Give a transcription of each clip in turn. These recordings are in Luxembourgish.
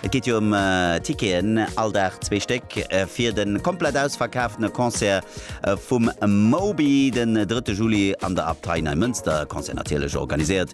Et geet jo ëm Ticketen, all Dag zwee Stéck, fir de komplett ausverkaaften Concert vum Moby den 3 Juli an der Abtei Neimënster. Concert natierlech organiséiert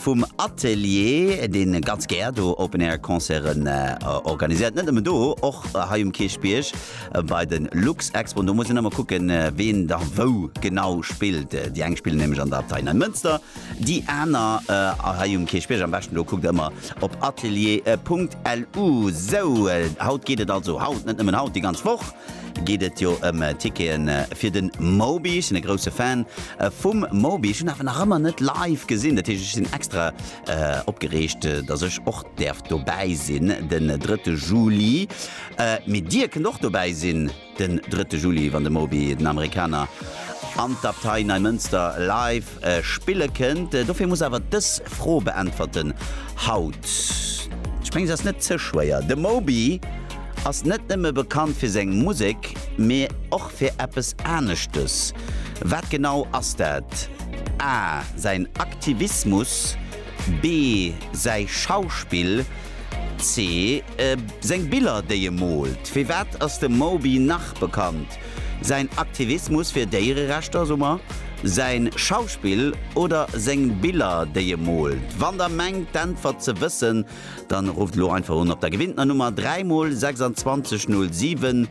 vum Atelier, dee ganz gär do Open Air Concerten organiséiert, net nëmmen do, och hei um Kierchbierg bei de Luxexpoen. Do muss een ëmmer kucken, ween da wou genau spillt. Déi eng spillen nämlech an der Abtei Neimënster, Déi aner hei um Kierchbierg, am beschten do kuckt der ëmmer op atelier.lu. Sou, haut geet et also, haut, net nëmmen haut, déi ganz Woch geet et jo ëm Tickete fir de Moby. Ech sinn e grousse Fan vum Moby, ech hunn awer nach ëmmer net live gesinn. Dat heescht, ech sinn extra opgereegt, datt ech och däerf dobäi sinn den 3 Juli. Mee Dir kënnt och dobäi sinn. Den drëtte Juli, wann de Moby den Amerikaner an d'Abtei Neimënster live spille kënnt. Dofir muss awer dës Fro beäntwerten haut. Ech mengen se ass net ze schwéier. De Moby ass net nëmme bekannt fir seng Musek, mee och fir eppes aneschtes. Wat genau ass dat? A, Säin Aktivismus, B, Säi Schauspill, C, Seng Biller déi e moolt, firwat ass de Moby nach bekannt? Säin Aktivismus fir Déiererechter, soe mer, säin Schauspill oder seng Biller déi e moolt? Wann der mengt d'Äntwert ze wëssen, dann rufft elo einfach un op der gewinntener Nummer 3 mol 26 07.